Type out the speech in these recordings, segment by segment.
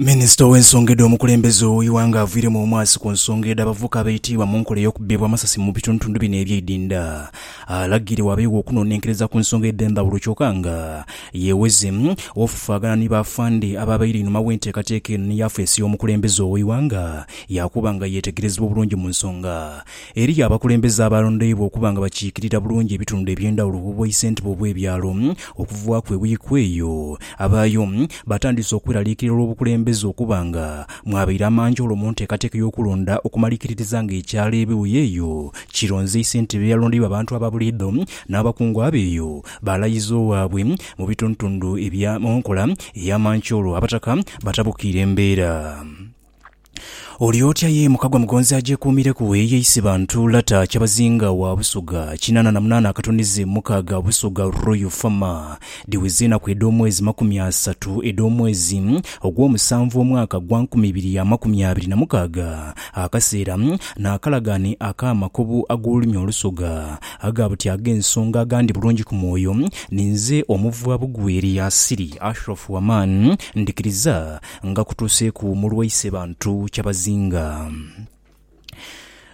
Minisita ow'ensonga edh'omukulembeze ow'eighanga aviiremu omwasi ku nsonga edh'abavubuka abaitiibwa mu nkola ey'okubibwa amasasi mu bitundutundu bino ebyeidinda alagire wabeegho okunonenkereza ku nsonga edh'endhawulo kyoka nga yeweze ofufaagana ni b'afande ababaire einhuma w'enteekateeka eno ni yafeesi y'omukulembeze ow'eighanga yaakuba nga yeetegerezebwa obulungi mu nsonga Eriyo abakulembeze abaalondoibwa okuba nga bakiikirira bulungi ebitundu eby'endhawulo ku bubwaisentebe obw'ebyalo. Okuvaaku ewiiki eyo, abaayo baatandise okweraliikirira olw'obukulembeze okuba nga mwabaire amanjoolo mu nteekateeka y'okulonda okumalikiririza nga ekyalo Ebiwuye eyo kironze eisentebe eyalondeibwa abantu aba buliidho n'abakungu abo eyo baalayiza owaabwe mu bitundutundu ebya mu nkola ey'amancoolo. Abataka batabukiire mbeera. Oli otya ye mukagwa mugonzi agyekuumireku eyeise bantu Lata Kyabazinga wa Busoga kinana na munana akatunizi mukaaga Busoga Royal Fama Dhiwiza enaku edh'omwezi makumi asatu edh'omwezi ogw'omusanvu omwaka gwa nkumi ibiri ya makumi abiri na mukaaga Akaseera n'akalagaane ak'amakobu ag'olulimi olusoga aga buti ag'ensonga agandi bulungi ku mwoyo Ninze omuvwa bugwere Yaasiri Ashraf Waman Ndhikiriza nga kutuuseeku mu lwaise bantu kyabazinga.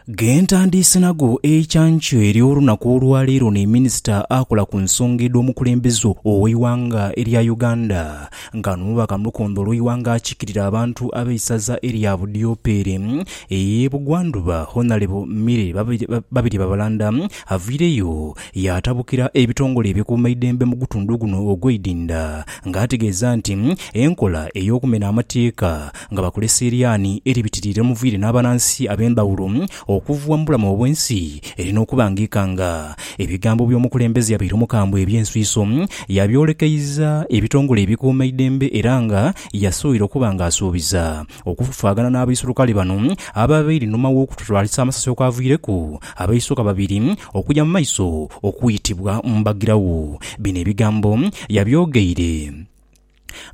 Gentandiise nago eikyankyo ery'olunaku olwaleero ni minisita akola ku nsonga edh'omukulembeze ow'eighanga erya Uganda nga n'omubaka mu lukondo olw'eighanga akikirira abantu ab'eisaza erya Budiopeere ey'ebugwandhuba Honalebo Milly Babirye Babalanda avaireyo Yaatabukira ebitongole ebikuumaidembe mu gutundu guno ogw'eidinda nga ategeeza nti enkola ey'okumena amateeka nga bakolesa eryaani eribitiriire omuviire n'abanansi ab'endhawulo okuvwa mu bulamu obw'ensi erina okuba ng'ekanga. Ebigambo by'omukulembeze yabaire omukambwe eby'enswiso yabyolekeiza ebitongole ebikuumaidembe era nga yasubira okuba ng'asuubiza Okufufaagana n'abaisulukale bano abaabaire einhuma w'okututwalisa amasasi okwaviireku abaisoka babiri okuja mu maiso okwitibwa mbagiragho. Bino ebigambo yabyogeire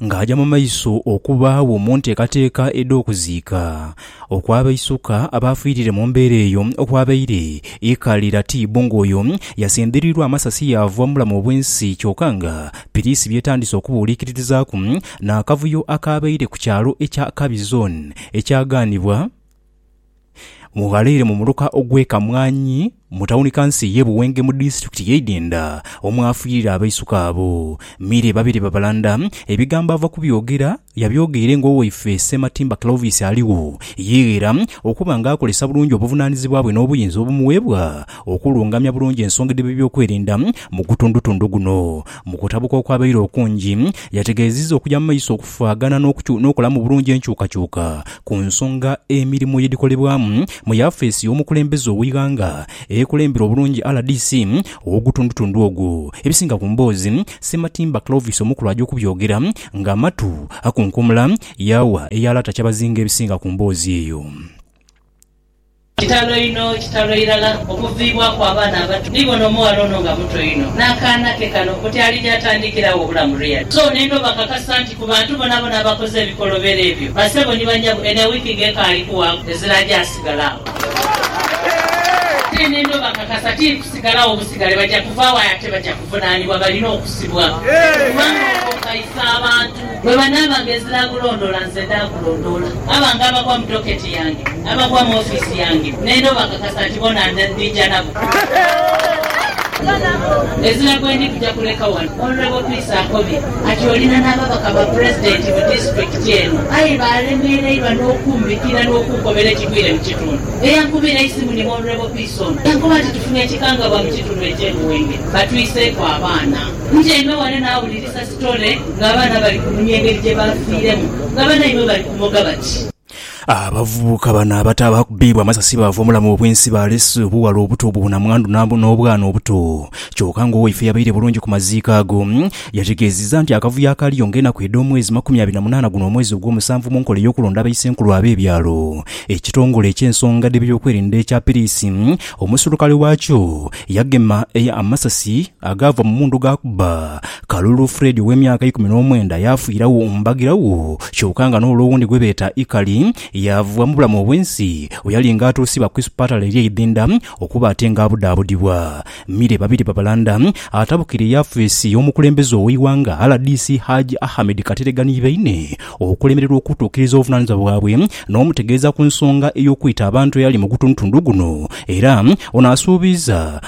ng'aja mu maiso okubaagho mu nteekateeka edh'okuziika okw'abaisoka abaafiirire mu mbeera eyo okwabaire e Kaliratibbu ng'oyo yasendereirwa amasasi yaava mu bulamu obw'ensi kyoka nga piriisi by'etandise okubuuliikirizaaku n'akavuyo akaabaire ku kyalo ekya Kabizon ekyagaanibwa mu ghaleere mu muluka ogw'e Kamwanyi mu tawuni kanso ey'e Buwenge mu disitulikiti y'e Idhindha omwafiirira abaisuka abo. Mire babeere babalanda, ebigambo ava kubyogera yabyogeire ng'owaife Ssematimba Clovis aligho, yeeghera okuba nga akolesa bulungi obuvunaanizibwa bwe n'obuyinza obumuweebwa okulungamya bulungi ensonga edh'ebyokwerinda mu gutundutundu guno. Mu kutabuka okwabaire okungi, yategeezizza okugya mu maiso okufaagana n'okolamu obulungi enkyukakyuka ku nsonga emirimu yedhikolebwamu mu yafeesi y'omukulembeze ow'eighanga ekulembera obulungi rdc ow'ogutundutundu ogwo. Ebisinga ku mboozi Ssematimba Clovis omukulu agya okubyogera nga amatu akunkumula, yaawa eya Lata Kyabazinga ebisinga ku mboozi eyo. Kitalo inho, kitalo irala okuviibwaku abaana abato. Ni bona omughala ono nga muto inho, n'akaana ke kano oti ali gy'atandikira agho obulamu reali. So n'endha obakakasa nti ku bantu bonabona abakoze ebikolobero ebyo, bassebo ni banyabo, eno ewiiki nga ekaali kuwaaku, ezira agyasigala agho. Aye n'endha obakakasa tiiri kusigalagho busigale, baja kuvaagho aye ate baja kuvunaanibwa, balina okusibwa, kubanga okwo kukayisa abantu. Bwe banaabanga ezinaagulondoola, nze ndaakulondoola. Abo ange abagwa mu doketi yange, abagwa mu ofiisi yange, n'enda obakakasa nti bona ndija nabo. Ezira gwe ndi kuja kuleka wano. Honourable Peace akobye ati olina n'ababaka ba Pulezidenti mu disitulikiti eno aye baalemereirwa n'okumbikira n'okunkobera ekigwire mu kitundu. Eyankubira eisimu ni Honourable Peace ono yankoba nti tufunye ekikangabwa mu kitundu eky'e Buwenge batwiseeku abaana. Ntyaime ghano naawulirisa. Story ng'abaana bali kunhumya engeri gye baafiiremu nga banaibwe bali kumoga bati. Abavubuka bano abato abaakubiibwa amasasi baava omulamu obwensi baalese obuwala obuto obwo bunamwandu n'obwana obuto kyoka nga owaife yabaire bulungi ku maziiko ago yategeezizza nti akavuyo akaaliyo ng'enaku edh'omwezi makumi abiri na munaana guno omwezi ogw'omusanvu mu nkola ey'okulonda abaisenkulu ab'ebyalo ekitongole eky'ensonga dh'ebyokwerinda ekya piriisi omuserukale waakyo yagema amasasi agaava mu mundu g'akuba Kalulu Fred ow'emyaka eikumi n'omwenda yaafiiragho mu mbagiragho kyoka nga n'ole owundi gwe beeta Ikali yaavubwa mu bulamu obw'ensi bwe yali nga atuusibwa ku isipatale ery'e Idhinda okuba ate nga abudaabudibwa mire babiri babalanda atabukire yafeesi y'omukulembeze ow'eighanga rdc Hajj Ahmed Kateregga ni baine okulemererwa okutuukiriza obuvunaanizibwa bwabwe n'omutegeeza ku nsonga ey'okwita abantu eyali mu gutundutundu guno era ono asuubiiza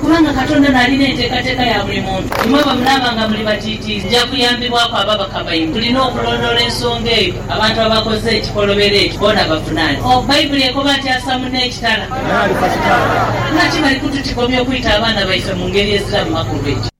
Kubanga Katonda n'ali n'enteekateeka ya buli muntu. Imwe bwe munaaba nga muli batiitiizi, nja kuyambibwaku ababaka baimwe. Tulina okulondoola ensonga eyo. Abantu abakoze ekikolobero ekyo boona bafuna ki? O, Baibuli ekoba nti Asamu n'ekitala. Naye ali ku kitala. Lwaki bali kututigomya okwita abaana baife mu ngeri eziramu makulu? Ekyo.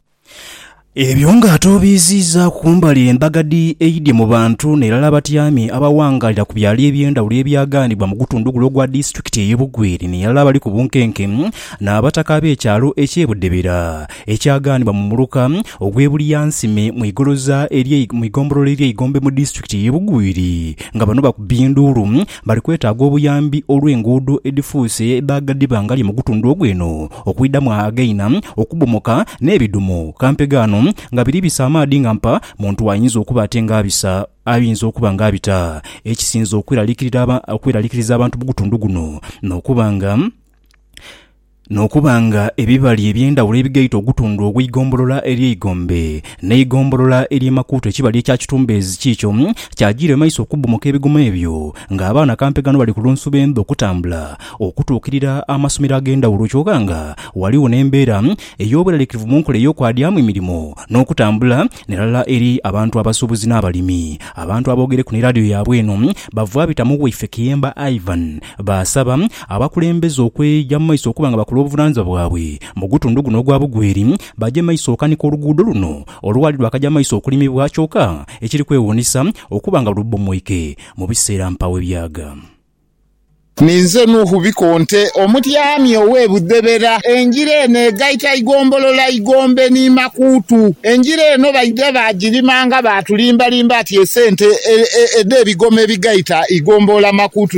Ebyo ng'atoobiiziiza ku mbali embaga dhi Eidhi mu bantu n'irala abatyami abawangaalira ku byalo eby'endhawulo ebyagaanibwa mu gutundu gule ogwa disitulikiti ey'e Bugweri n'irala abali ku bunkenke n'abataka ab'ekyalo eky'e Budebera ekyagaanibwa mu muluka ogw'e Bulyansime mu igoloza ery'e mu igombolola ery'e Igombe mu disitulikiti ey'e Bugweri nga bano bakubye enduulu Bali kwetaaga obuyambi olw'enguudo edhifuuse edhaagadhiba ngali mu gutundhu ogw'eno okwidhamu againa okubomoka n'ebidhumo kampeghe ano nga biri bisa amaadhi nga mpa muntu ayinza okuba ate nga abisa ayinza okuba nga abita ekisinze okweralikiriza abantu mu gutundhu guno n'okuba nga n'okuba nga ebibali eby'endhawulo ebigaita ogutundhu ogw'eigombolola ery'Eigombe n'eigombolola ery'e Makuutu ekibali ekya Kitumbeezi kiikyo kyajiira emaiso okubbomoka ebigoma ebyo nga abaana kampe ghano bali ku lunsuba endhu okutambula okutuukirira amasomero ag'endhawulo kyoka nga ghaligho n'embeera ey'obweraliikirivu mu nkola ey'okwadyamu emirimo n'okutambula nerala eri abantu abasuubuzi n'abalimi Abantu aboogereku ni laadiyo yaabwe eno bavwabita mu waife Kiyemba Ivan Baasaba abakulembeze okweeja mu maiso okuba nga bakola obuvunanizibwa bwabwe mu gutundu guno ogwa Bugweri baje maiso okanika oluguudo luno olwali lwakaja maiso okulimibwa kyoka ekiri kwewuunisa okuba nga lubbomoike mu biseera mpaawo ebyaga. Ninze Nuhu Bikonte, omutyaami ow'e Budhebera. Engira eno egaita Igombolola Igombe ni Makuutu. Engira eno baidha baagirima nga baatulimbalimba ati esente edh'ebigoma ebigaita Igomboola Makuutu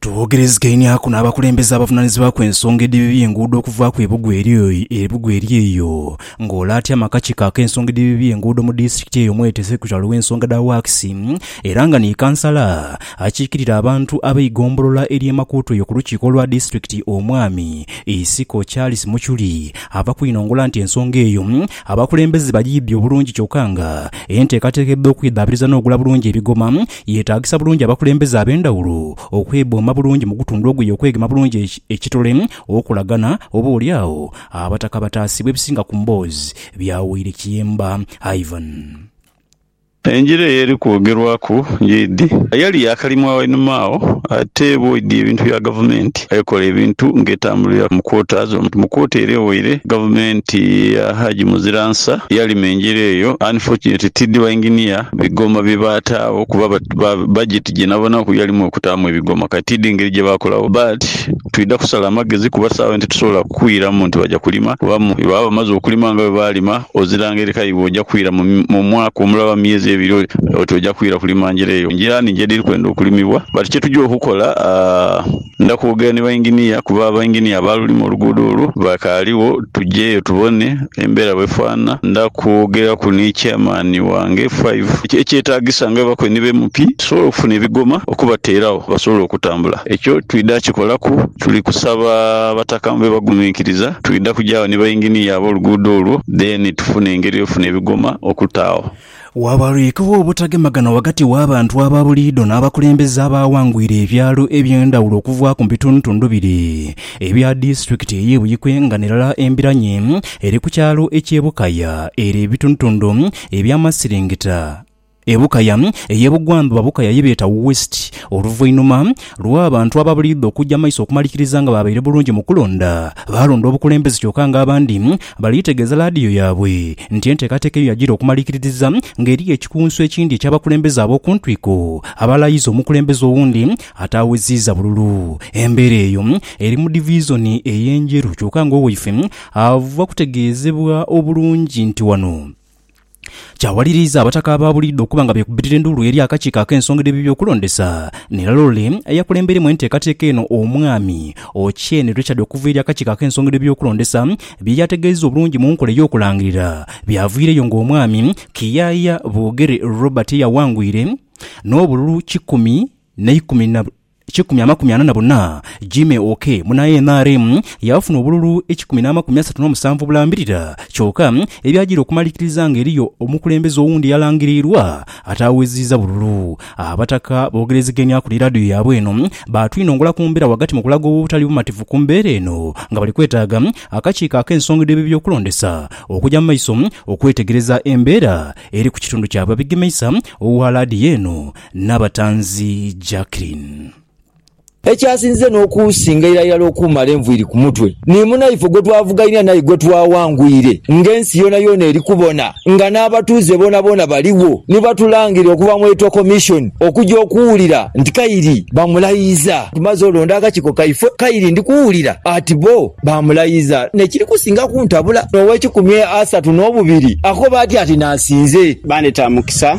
Twogerezegeinhiaku n'abakulembeze abavunaanizibwaku ensonga edhibi by'enguudo okuvaaku e Bugwe eri e Bugwe eri eyo ng'ole atya amakakiiko ak'ensonga edhibi by'enguudo mu disitulikiti eyo mwete Sekitrale w'ensonga dha Wakisi era nga ni Kansala akiikirira abantu ab'eigombolola ery'e Makuutu eyo ku lukiiko lwa disitulikiti Omwami Isiko Charles Muchuri ava kwinongola nti ensonga eyo Abakulembeze bagiidhi obulungi kyoka nga enteekateeka edh'okwidhaabiriza n'ogula bulungi ebigoma yeetaagisa bulungi abakulembeze ab'endhawulo okwebooma bulungi mu gutundu ogwo ye okwegema bulungi ekitole okolagana oba oli agho Abataka bataasibwa ebisinga ku mboozi bya Woirekiyemba Ivan. Enjiri eyo eri kwogerwaku ng'eidhi. Yali yaakalimwa wainuma agho, ate bw'oidhi ebintu bya gavumenti, ekola ebintu ng'etambulira mu kwota ze. Mu kwota ere ewaire, gavumenti ya Haji Muziransa yalima enjiri eyo. Unfortunately, tidhi bainginiya bigoma bye baataagho kuba bajeti gye nabonaku yalimu okutaamu ebigoma. Kati tidhi ngeri gye baakolagho but twidha kusala magezi kuba sawa eno titusobola kukwiramu nti baja kulima kuba bwe baba bamaze okulima nga bwe baalima, Ozira ngeri ka iwe oja kwira mu mwaka omulala oba mu myezi ebiri oti oja kwira kulima njira eyo. Njira nhingi edhiri kwenda okulimibwa but kye tugya okukola ndha kwogera ni bainginiya kuba abainginiya abaalulima oluguudo olwo bakaaligho tugyeyo tubone embeera bwefaanana. Ndha kwogeraku ni chairman wange Five ekyetaagisa nga bwe bakoye ni ba MP tusobole okufuna ebigoma okubateerawo basobole okutambula. Ekyo twidha kikolaku Tuli kusaba abataka mube baguminkiriza, twidha kugya agho ni bainginiya ab'oluguudo olwo then tufune engeri y'okufuna ebigoma okuta agho. Waabaliikewo obutagemagana ghagati w'abantu aba buliidho n'abakulembeze abaawangwire ebyalo eby'endhawulo okuva ku bitundutundu bire ebya disitulikiti ey'e Buikwe nga n'erala embiranye eri ku kyalo eky'e Bukaya ere ebitundutundu eby'amasiringita Ebukaya ey'ebugwandhuba bukaya ye beeta West, oluvainhuma lw'abantu ababuliidha okuja maiso okumalikiriza nga baabaire bulungi mu kulonda, baalonda obukulembeze kyoka nga abandi bali tegeeza laadiyo yaabwe nti enteekateeka eyo yagira okumalikiririza nga eriyo ekikunsu ekindi eky'abakulembeze ab'oku ntwiko abalayiza omukulembeze owundi ataaweziiza bululu embeera eyo eri mu divizoni ey'e Njeru kyoka nga owaife ava kutegeezebwa obulungi nti wano Kyawaliriza abataka aba buliidho okuba nga beekubitira enduulu eri akakiiko ak'ensonga dh'ebyokulondesa n'erala ole eyakulembeiremu enteekateeka eno Omwami Ochieng Richard okuva eri akakiiko ak'ensonga dh'ebyokulondesa bye yaategeezezza obulungi mu nkola ey'okulangirira byaviireyo ng'omwami Kiyaaya Bogere Robert eyawangwire n'obululu kikumi n'eikumi na Ekikumi amakumi ana na buna, Jimmy Okee, muna nrm, yaafuna obululu ekikumi n'amakumi asatu n'omusanvu obulambirira. Kyoka, ebyajaire okumalikiriza nga eriyo omukulembeze owundi eyalangiriirwa ataaweziiza bululu. Abataka boogerezegeenia ku ni laadiyo yaabwe eno, baatwinongola ku mbeera ghagati mu kulaga obutali bumativu ku mbeera eno nga bali kwetaaga akakiiko ak'ensonga dh'ebyokulondesa okuja mu maiso okwetegereza embeera eri ku kitundu kyabwe. Abegemeisa ogha laadiyo eno, Nabatanzi Jacqueline. Ekyasinze n'okusinga iralirala okumala enviiri ku mutwe, ni munaife gwe twavughainhira n'aye gwe twawangwire ng'ensi yoonayoona eri kubona nga n'abatuuze boonaboona baligho ni batulangirira okuva mu Electoral Commission okuja okuwulira nti Kairi bamulayiza. Tumaze olonda akakiiko kaife, Kairi ndi kuwulira ati bo baamulayiza n'ekiri kusinga kuntabula. Ow'ekikumi asatu n'obubiri akoba atya nti naasinze. Baandheta Mukisa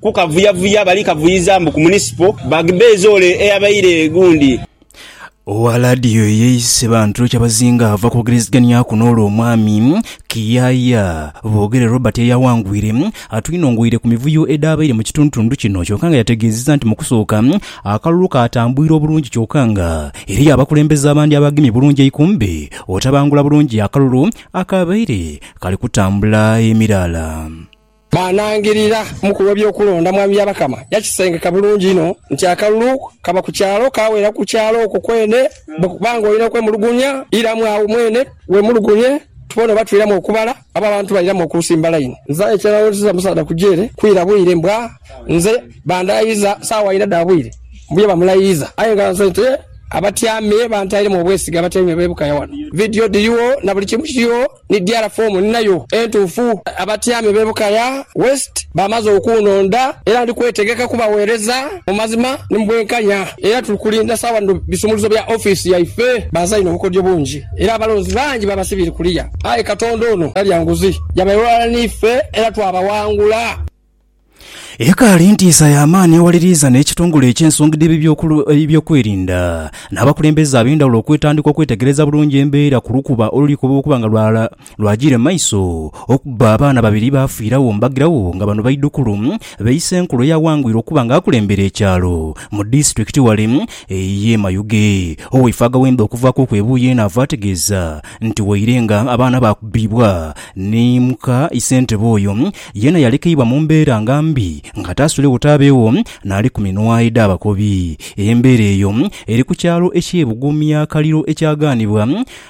Kukavuyavuya bali kavuyiza mbu ku munisipo bagbeeze ole eyabaire gundi. Owa laadiyo eyeeyise bantu ekyabazinga ava kwogerezeganyaku n'ole omwami Kiyaaya Bogere Robert eyawangwire atwinongoire ku mivuyo edhaabaire mu kitundutundu kino kyoka nga yategeezezza nti mu kusooka akalulu kaatambwire obulungi kyoka nga eriyo abakulembeze abandi abaagemye bulungi eikumbi otabangula bulungi akalulu akaabaire kali kutambula emiraala. Bwanangirira mukulu w'ebyokulonda Mwami Byabakama yakisengeka bulungi inho nti akalulu kaba ku kyalo kaawera ku kyalo okwo kwene bwe kuba ng'olina okwemulugunya iramu agho mwene weemulugunye tubone oba twiramu okubala oba abantu bairamu okuusimba layini. Nze aye kyenalowoozezza musaadha ku jeere kwira bwire mbwa nze bandaayiza saawa ina dha bwire mbu ye bamulayiiza aye nga nze nte abatyaame bantairemu obwesige abatyaime beebukayo wano vidiyo dhirigho na buli kimu kirigho ni DR foomu ninayo entuufu. Abatyame b'e Bukaya West baamaze okunhonda era ndi kwetegeka kubaweereza mu mazima ni mu bwenkanya era tuli kulinda sawa dhino bisumuluzo bya ofiisi yaife. Bazaine obukodyo bungi era abalonzi bangi babasibiire kuliya aye Katonda ono talya nguzi. Yabayoolaghala n'ife era twabawangula. Ekaali ntiisa ya maani ewaliriiza n'ekitongole eky'ensonga edh'ebyokwerinda n'abakulembeze ab'endhawulo okwetandika okwetegereza bulungi embeera ku lukuba oluli kuba okuba nga lwajiire mu maiso okuba abaana babiri baafiiragho mbagiragho nga bano baidhukulu ba Isenkulu eyaghangwire okuba nga akulembera ekyalo mu disitulikiti wale ey'e Mayuge. Oweifwe Agawembe okuvaaku okw'ebuuyi eno ava ategeeza nti waire nga abaana baakubibwa ni muka Isentebe oyo, Yeena yalekeibwa mu mbeera nga mbi nga taasulewo taabeewo n'ali ku minwae dh'abakobi. Embeera eyo eri ku kyalo eky'e Bugumya Kaliro ekyagaanibwa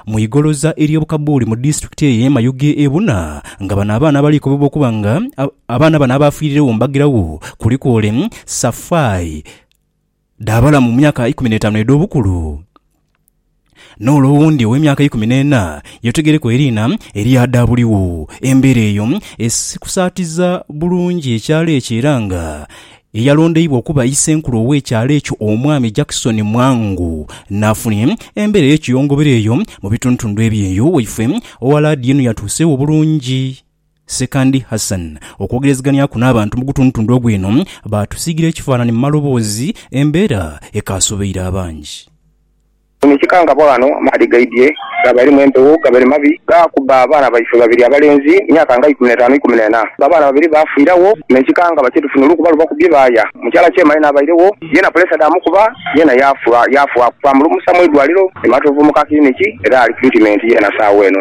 mu igoloza ery'obukabuuli mu disitulikiti eye Mayuge e buna nga bano abaana abaliikobebwa okuba nga abaana bano abaafiiriregho mu bagiragho kuliku ole Safai dhaabala mu myaka eikumi n'etaanu edh'obukulu, n'ole owundi ow'emyaka eikumi n'ena, ye otegeereku eriina erya dha buligho. Embeera eyo esikusaatiza bulungi ekyalo ekyo era nga eyalondeibwa okuba Isenkulu ow'ekyalo ekyo Omwami Jackson Mwangu n'afuna embeera ey'ekiyongobero eyo mu bitundutundu eby'eyo waifwe oghalaadiyo eno yatuusegho bulungi. Sekandi Hassan okwogerezeganiaku n'abantu mu gutundutundu ogwo eno, baatusiigira ekifaanani mu maloboozi, embeera ekaasobeire abangi. Kino ekikangabwa ghano amaadhi gaidhye gaabalimu empewo gabere mabi gaakuba abaana baife babiri abalenzi myaka nga ikumi n'etaanu ikumi n'ena. Abaana babiri baafiiragho n'ekikangabwa kye tufunire okuba lubakubye baaya. Mukyala Kyema yena abairegho, yena pulesa dhaamukuba yena yaafa. Yaafa, twamulumusa mu idwaliro e Matovu mu ka kiliniki era ali tiritimenti yena saagha eno.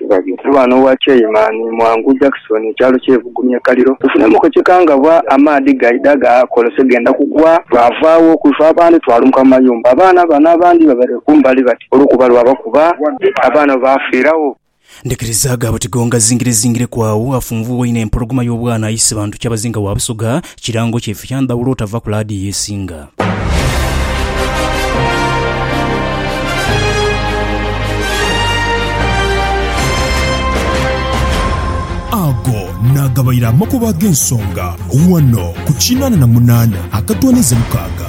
Ndi ghano owa Chairman Mwangu Jackson, ekyalo kye Bugumye Kaliro. Tufunemu ku ekikangabwa amaadhi gaidha gaakolose genda kugwa lwavaagho kwife abandhi twalumuka mu mayumba. Abaana bano abandhi babaire kumbali bati olwokuba lwabakuba abaana bo baafiiragho. Ndhikiriza aghabwe tigongazingirezingireku agho afunvubwa inho empologoma y'obwana aise bantu kyabazinga wa Busoga Kirango kyaife kya ndhawulo otava ku laadiyo esinga. Ago naagabaire amakubo ag'ensonga ghano ku kinaana na munaana akatooneza mukaaga.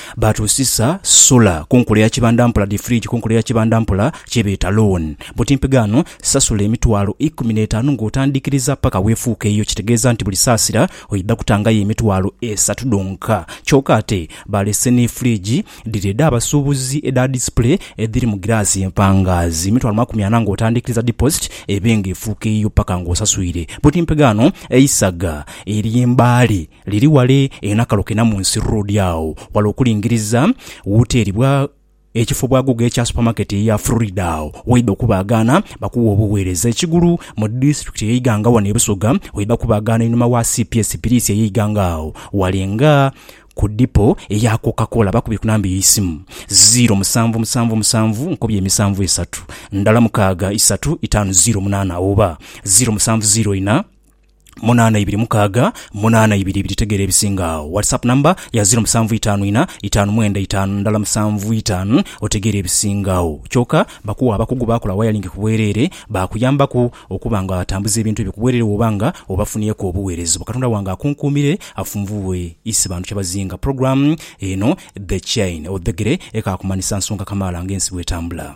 Baatuusisa Sula ku nkula ya kibanda mpola dhi fridge ku nkula ya kibanda mpola kye beeta loan. Buti mpigaano, sasula emitwalo ikumi n'etaanu ng'otandikiriza paka weefuuka eyo kitegeeza nti buli saasira oidha kutangayo emitwalo esatu dhonka. Kyoka ate baalese ni fridge dhiri edh'abasuubuzi edha display edhiri mu giraasi empangaazi. Emitwalo makumi ana ng'otandikiriza deposit ebe ng'efuuka eyiyo paka ng'osaswire. Buti mpigaano, eisaga ery'embaale. Liri wale eyo nakalo kena mu nsi road agho wale okulingiriza woteri bwa ekifo bwa guuga ekya supermarket eya Frida agho waidha okubaagaana bakuwe obuweereza ekigulu mu district eye Iganga wano e Busoga waidha kubaagaana einhuma wa cps piriisi eye Iganga agho wale nga ku dipo eya coca cola bakubye ku namba ey'eisimu ziro musanvu musanvu musanvu nkobye emisanvu esatu ndala mukaaga isatu itaanu ziro munaana oba ziro musanvu ziro ina munaana ibiri mukaaga munaana ibiri ibiri tegeera ebisinga agho whatsapp number ya ziro musanvu itaanu ina itaanu mwenda itaanu ndala musanvu itaanu otegeere ebisinga agho kyoka bakuwa abakugu bakola wayalingi kubwerere bakuyambaku okuba nga atambuza ebintu ebyo kubwerere woba nga obafunyeku obuwereza obwo katonda wange akunkuumire afunvughe isi bantu kyabazinga program eno the chain odhegere ekaakumanisa nsonga kamaala nga ensi bwetambula.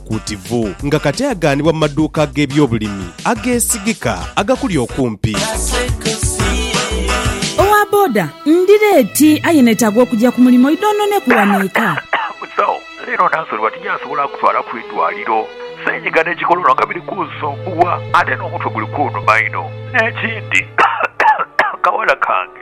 Kuutivu, nga kati aghanibwa mu maduuka ag'ebyobulimi ageesigika agakuli okumpi. Owa boda, Ndi leeti aye neetaaga okugya ku mulimo idhoononeku wano eka. Musawo, Leero Nansoli bati gy'asobola akutwala ku idwaliro. Ssenyiga n'ekikololo nga biri kunsumbuwa ate n'omutwe guli kunuma inho. N'ekindi, kawala kange.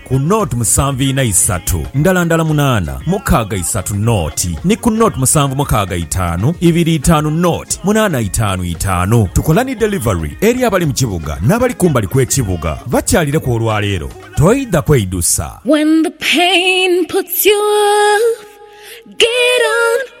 ku nought musanvu ina isatu ndala ndala munaana mukaaga isatu nought ni ku nought musanvu mukaaga itaanu ibiri itaanu nought munaana itaanu itaanu. Tukola ni delivery eri abali mu kibuga n'abali kumbali kw'ekibuga. Bakyalireku olwaleero toidha kweidusa. When the pain puts you off, get on